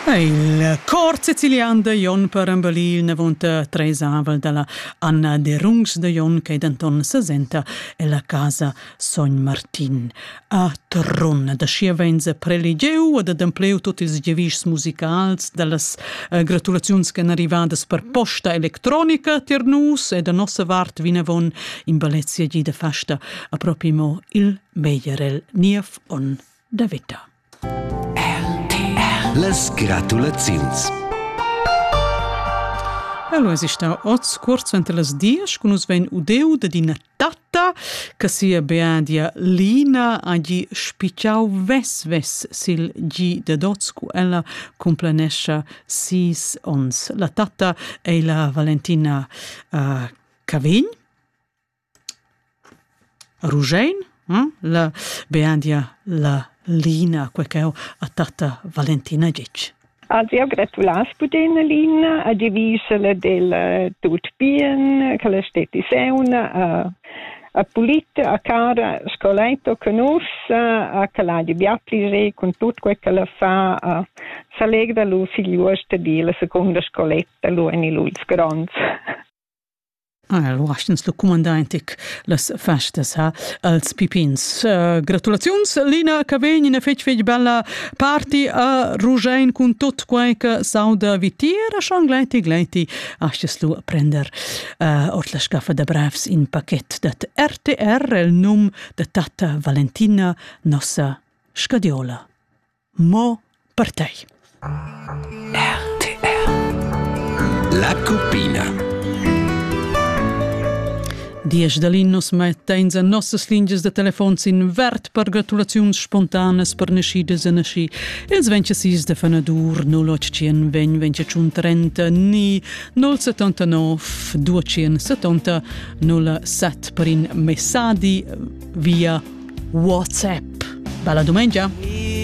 Il cor sicilian da Jon per embellir n'avonta treis avel dalla Anna de Rungs de Jon che denton sesenta ella casa Sogn Martin. A Trun da schi venza preligieu ad adempleu tot ils gevischs musicals dallas eh, gratulaziuns che èn arrivadas per posta electronica tier nus e da nossa vart vinavon in bellezia gi de festa a propi mo il meglierel niev on. da veta. Las gratulaziuns. Elo es ista hoz cuort suenter las dias cun nus vegn udeu da d'ina tatta che sia beadia Lina ha gi spicciau ves ves sil gi da dots cu ella complanescha sis ons. La tatta ei la Valentina uh, Cavegn Ruschein, la beandia la Lina, quei ch'eu ha tatta Valentina ditg. Ad eu gratulas pudin Lina a divisela del tut bien, che la steti seuna a a pulita, a cara scoleto con us, a che la di bia plisé con tut quei che la fa, a s'allegra lu figliuosta di la seconda scoletta lu en il ults gronds. Alura astg'ins lu cumandar in tec las festas, ha, als pipins. Gratulaziuns, Lina, che vegn ina fetg fetg bella party a Ruschein cun tut quei che s'auda vitier e schon gleiti gleiti astgis lu prender ord la scaffa da brevs in pachet dad RTR el num da tatta Valentina, nossa scadiola. Mo per tei. RTR La cuppina Diesch da Linus metta in en nossas lingias da telefon sin vert per gratulaziuns spontanas per naschidas e nasci. Els vencha sis de fanadur 081 ven vencha tschun trenta ni 079 270 07 per in messadi via WhatsApp. Bella domenica!